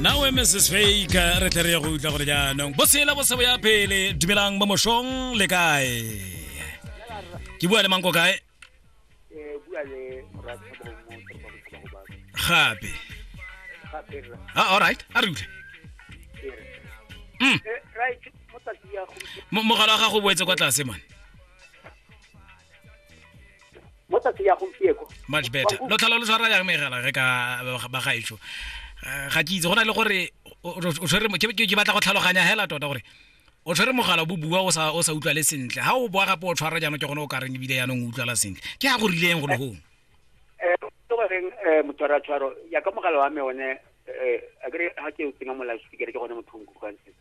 nawe mrs fake re tle re ye go utlwa gore jaanong bosela bosebo ya pele dumelang mo moshong le kae ke bua le manko kae gape a ah, alright a re utlwe mm. mogala wa gago o boetse kwa tlase mane mo tsatsi ya gompieko much better lo tlhola lo tshwara yang megela re ka ba gaetsho eh, ga ke itse go na le gore o tshwere ke batla go tlhaloganya hela tota gore o tshwere mogala bo bua o sa o sa utlwale sentle ha o boa gape o tshwara jaanong ke gone o ka reng ebile yaanong o utlwala sentle ke ga go rileng go le gong eh, goreng eh, motshwaratshwaro yaka mogala wa me one eh, a kere ga ke o tsenya mo loudspeaker ke gone motho o nkutlwang sentle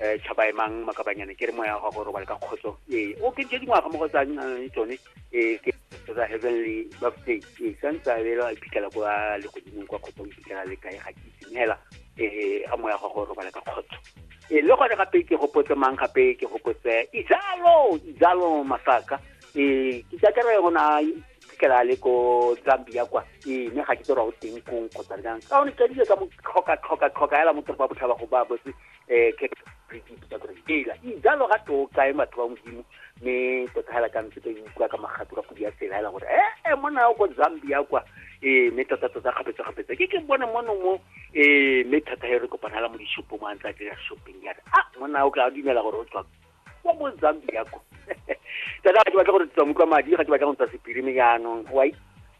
eh tšhaba emang makabanyane ke re moya wa gago o robale ka kgotso ee o ke tse dingwaga mo go tsa eh, tsone ee ke tsa heavenly birthday ee santse a bela a iphitlhela kwa legodimong kwa kgotso o iphitlhela le kae ga ke itumela ee a moya wa gago o robale ka kgotso ee le gone gape ke gopotse mang gape ke gopotse izalo izalo masaka ee ke tsakere go na iphitlhela le ko zambia kwa ee mme ga ke tse ra o teng kong kgotsa jang ka one kadile ka mo tlhoka tlhoka tlhoka ela mo toropa botlhaba go ba botse eh, ke ela ijalo ga to kae matho ba modimo mme tota hela ka ntse ka utlwa ka magato ka podi ya tsela hela gore ee mona o ko zambia kwa ee mme tota tota kgapetsa kgapetsa ke ke bone mono mo ee mme thata he re kopana hela mo dishopo mo a ntse a dira shopping yana a mona o ka dumela gore o tswa wa mo zambia ko tata ga ke batla gore tswa motlwa madi ga ke batla go ntswa sepirimi jaanong wa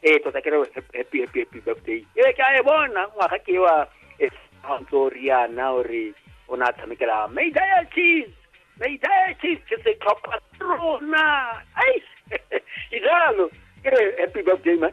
ee tota ke re happy happy happy birthday ee ke a e bona ngwaga ke wa e ntso riana ore o ne a tshamekela may diet cheese may diet cheese ke setlhopha rona ai ke jalo ke re happy birthday man